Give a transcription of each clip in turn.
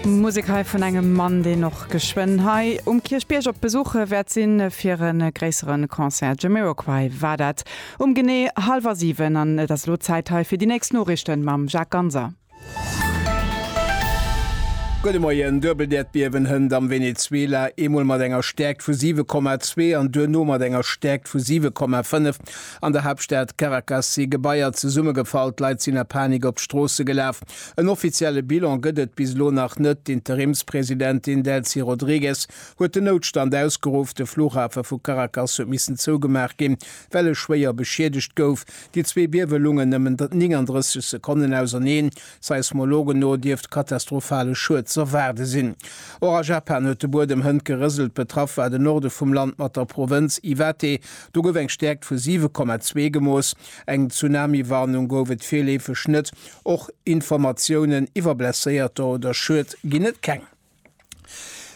Musek hei vun engem Mann, deen och geschwënn hei um Kierchbierg op Besuche wäert sinn, fir e gréissere Concert. Jamiroquai war dat um genee hallwer siwen. An et ass elo Zäit hei fir déi nächst Noriichten mam Jacques Ganser. Gudde Moien. Duebeldäerdbiewen hënt am Venezuela, eemol mat enger Stäerkt vu 7,2 an duerno mat enger Stäerkt vu 7,5. An der Haaptstad Caracas si Gebaier zesummegefall, d'Leit sinn a Panik op d'Stroosse gelaf. En offizielle Bilan gëtt et bis elo nach net. D'Interimspresidentin Delcy Rodrigues huet den Noutstand ausgeruff. De Flughafe vu Caracas huet missen zougemaach ginn, well e schwéier beschiedegt gouf. Déi zwee Biewe lungen nëmmen 39 Sekonnen auserneen. Seismologen no dierft katastrophale Schued z'erwaarde sinn. Och a Japan huet de Buedem hënt gerëselt. Betraff war de Norde vum Land mat der Provënz Iwate. Do gouf eng Stäerkt vu 7,2 gemooss. Eng Tsunami-Warnung gouf et virleefeg net. Och Informatiounen iwwer Blesséierter oder Schued ginn et keng.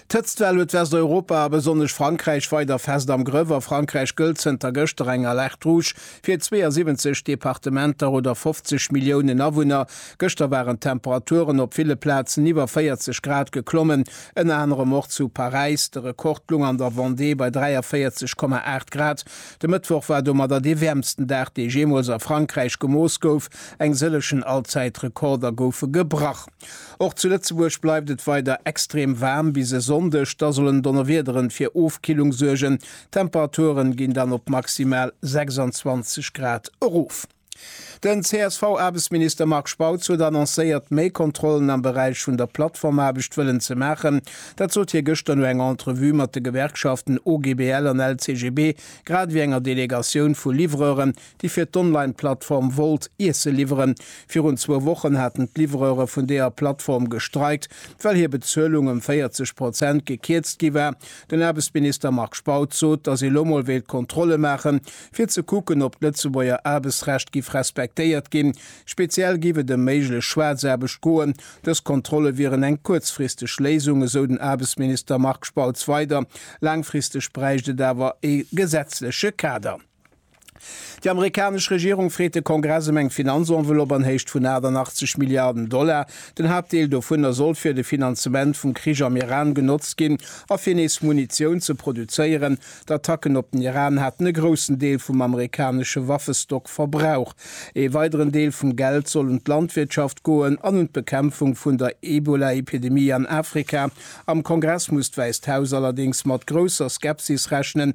D'Hëtztwell huet Westeuropa a besonnesch Frankräich weider fest am Grëff. A Frankräich gëllt zënter gëschter eng Alerte rouge fir 72 Departementer oder 50 Milliounen Awunner. Gëschter waren d'Temperaturen op ville Plazen iwwer 40 Grad geklommen, ënner anerem och zu Paräis. De Rekord loung an der Vendée bei 43,8 Grad. De Mëttwoch war domadder dee wäermsten Dag, dee jeemools a Frankräich gemooss gouf. Eng sëllechen Allzäitrekorder goufe gebrach. Och zu Lëtzebuerg bleift et weider extrem waarm bis e Sonndeg, da sollen Donnerwiederen fir Ofkillung suergen. D'Temperaturen ginn dann op maximal 26 Grad erof. Den CSV-Aarbechtsminister Marc Spautz huet annoncéiert, méi Kontrollen am Beräich vun der Plattformaarbecht wëllen ze maachen. Dat sot hie gëschter no enger Entrevue mat de Gewerkschaften OGBL an LCGB, grad ewéi enger Delegatioun vu Livreuren, déi fir d'Online-Plattform wollt Iesse liwweren. Virun zwou Wochen haten d'Livreuere vun deeër Plattform gestreikt, well hir Bezuelung ëm 40 Prozent gekierzt gi war. Den Aarbechtsminister Marc Spautz sot, datt ee lo mol wéilt Kontrolle maachen, fir ze kucken, ob d'Lëtzebuerger Aarbechtsrecht giff respektéiert ginn. Speziell giff et ëm méiglech Schwaarzaarbecht goen. Dës Kontrolle wieren eng kuerzfristeg Léisung, esou den Aarbechtsminister Marc Spautz weider. Laangfristeg bräicht et awer ee gesetzleche Kader. Déi amerikanesch Regierung freet de Kongress ëm eng Finanzenveloppe an Héicht vun 88 Milliarden Dollar. Den Haaptdeel dovunner soll fir de Finanzement vum Krich am Iran genotzt ginn a fir nees Munitioun ze produzéieren. D'Attacken op den Iran haten e groussen Deel vum amerikanesche Waffestock verbraucht. Ee weideren Deel vum Geld soll un d'Landwirtschaft goen an un d'Bekämpfung vun der Ebola-Epidemie an Afrika. Am Kongress muss d'Wäisst Haus allerdéngs mat grousser Skepsis rechnen,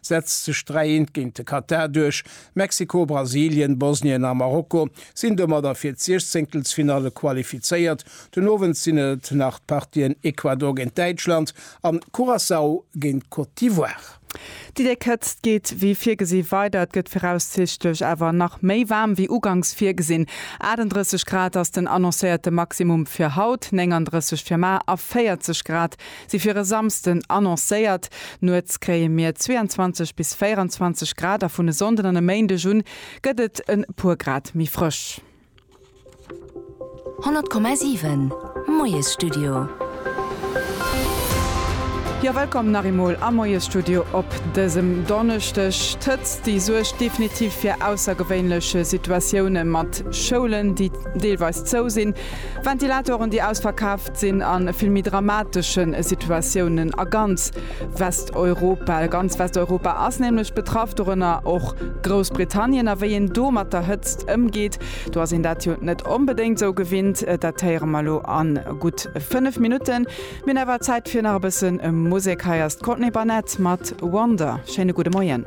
setzt sech 3 Eent géint de Katar duerch. Mexiko, Brasilien, Bosnien a Marokko sinn domadder fir d'Siechzéngtelsfinalle qualifizéiert. Den Owend sinn et nach d'Partien Ecuador géint Däitschland an Curaçao géint Côte d'Ivoire. Déi déck Hëtzt geet wéi virgesi weider. Et gëtt viraussichtlech awer nach méi waarm wéi uganks virgesinn. 38 Grad ass den annoncéierte Maximum fir haut, 39 fir mar a 40 Grad Si fir e Samsden annoncéiert. Nuets kréie mir 22 bis 24 Grad a vun e Sonnden an e Méindeg un gëtt et e puer Grad méi frësch. 100,7 Moiesstudio. Jo, wëllkomm nach eemol am Moiesstudio op dësem Donneschdeg. D'Hëtzt, déi suergt definitiv fir aussergewéinlech Situatioune mat Schoulen, déi deelweis zou sinn, Ventilatoren, déi ausverkaf, sinn a vill méi dramatesche Situatiounen a ganz Westeuropa. Ganz Westeuropa ass nämlech betraff, dorënner och Groussbritannien. A wéi een do mat der Hëtzt ëmgeet, do ass een dat jo net onbedéngt esou gewinnt. Dat héiere mer elo a gutt 5 Minutten. Mir hunn awer Zäit fir nach e bësse Musek. Hei ass d'Courtney Barnett mat Wonder. Schéine gudde Moien.